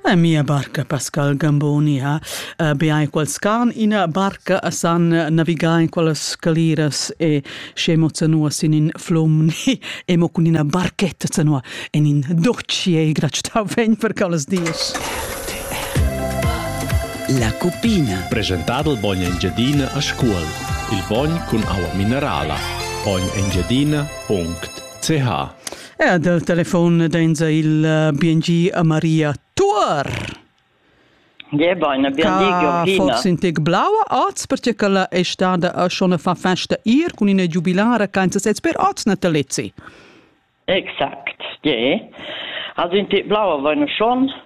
A mia barca Pascal Gamboni ha uh, beai quals carn ina barca a san navigar in quelles scaliras e scemo zanua sin in flomni e mo cun ina barchetta zanua en in doccie gracita vegn per callas dies. La cupina. Presentado il bogn Engiadina a scuol. Il bogn cun aua minerala. Bogn Engiadina.ch Ja, dal telefon dainsa il uh, BNG a Maria Tuor. Gebaina, BNG Georgina. Forz in tec blaua oz, perché che la è stada a schon fa festa ir con una giubilare kein sez per oz natalezi. Exakt, je. Also in tec blaua vaina schon,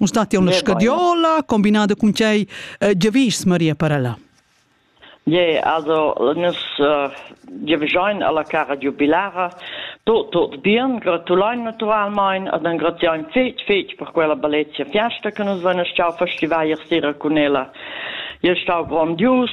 Un stati una scadiola combinata con cei eh, giavis Maria Parella. Yeah, also nus uh, giavischein alla cara giubilara tot tot bien, gratulein naturalmein ad un gratiain fetg fetg per quella bellezia fiesta che nus venes ciao festivai ier sera con ella. Io stau grandios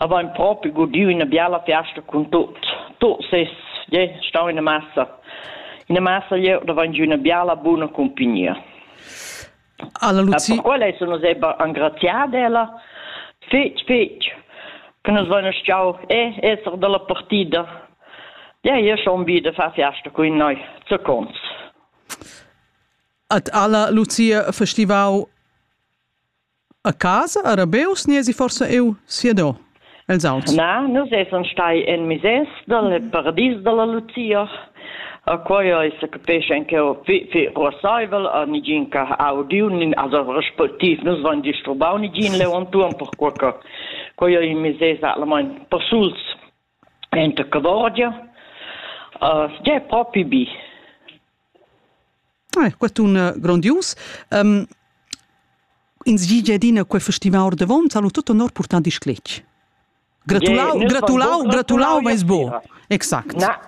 Avain propi gudieu üna biala fiasta cun tuot. Tuot ses jè stau üna massa. Üna massa glieud avain giü üna biala buna cumpagnia. Alla Luzi... Per quella sun nus eber engraziada ella fetg, fetg che nus vain stau e esser dalla partida. Ja, io schon bi da far fiasta con noi. Zu cons. At alla Lucia festivau A casa a Rabeus niesi forsa eu siadò els auts? Na, nus essan stai en mises dal paradis dalla Lucia. A quai ei se capescha in che fi ruassaivel a nigin che ha audiu nin also respectiv nus van disturbau nigin leu entuorn per quei che quei ei mises allamain persuls Enta Cavorgia. Tgei ei propi bi? Quest'un grondius. Um, ins gi gia adina quei festival ordavon, salu tut honor purtand il scletg. Gratulau, gratulau, gratulau meis bo. Exact. Na.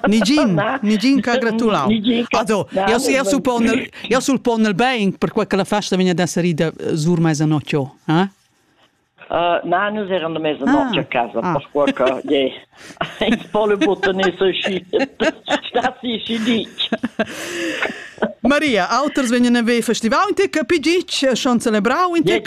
Nigin, nigin che ha gratulau. Also, io io suppon io sul pon il bein per quella festa vegna ad essere ida sur meisa nocchio, eh? Na, nus eran da mesa notg ah. a casa, ah. perquai che yeah, ins po le button sta si si ditg. Maria, auters vegnan a ver festival in te capi gitg schon celebrau in te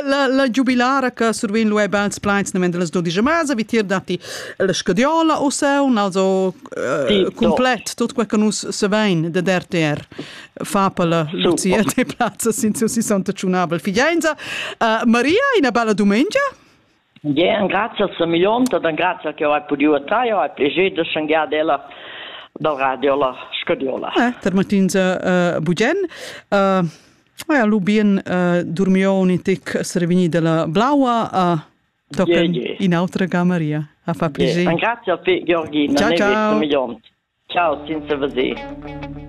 la la giubilara che survin lu ebbe als pleins nemmen delle 12 mese vi tir dati la scadiola o seu also eh, complet tot quel che nus se vein de DRTR fa per Lucia te plazza sin seu 61 figliainza. Uh, Maria, una bella domenica. Ja, un grazie a Milionta, un grazie che ho podido a te, ho piacere di sciangare della dal radio la scodiola. Eh, per Martinza uh, Bugen. Uh, ja, Lubien uh, dormioni tic servini della blaua uh, tocan yeah, yeah. in autra ga Maria. A fa piacere. Yeah. Un grazie a te Georgina, ciao ciao. Milionta. Ciao, senza veder.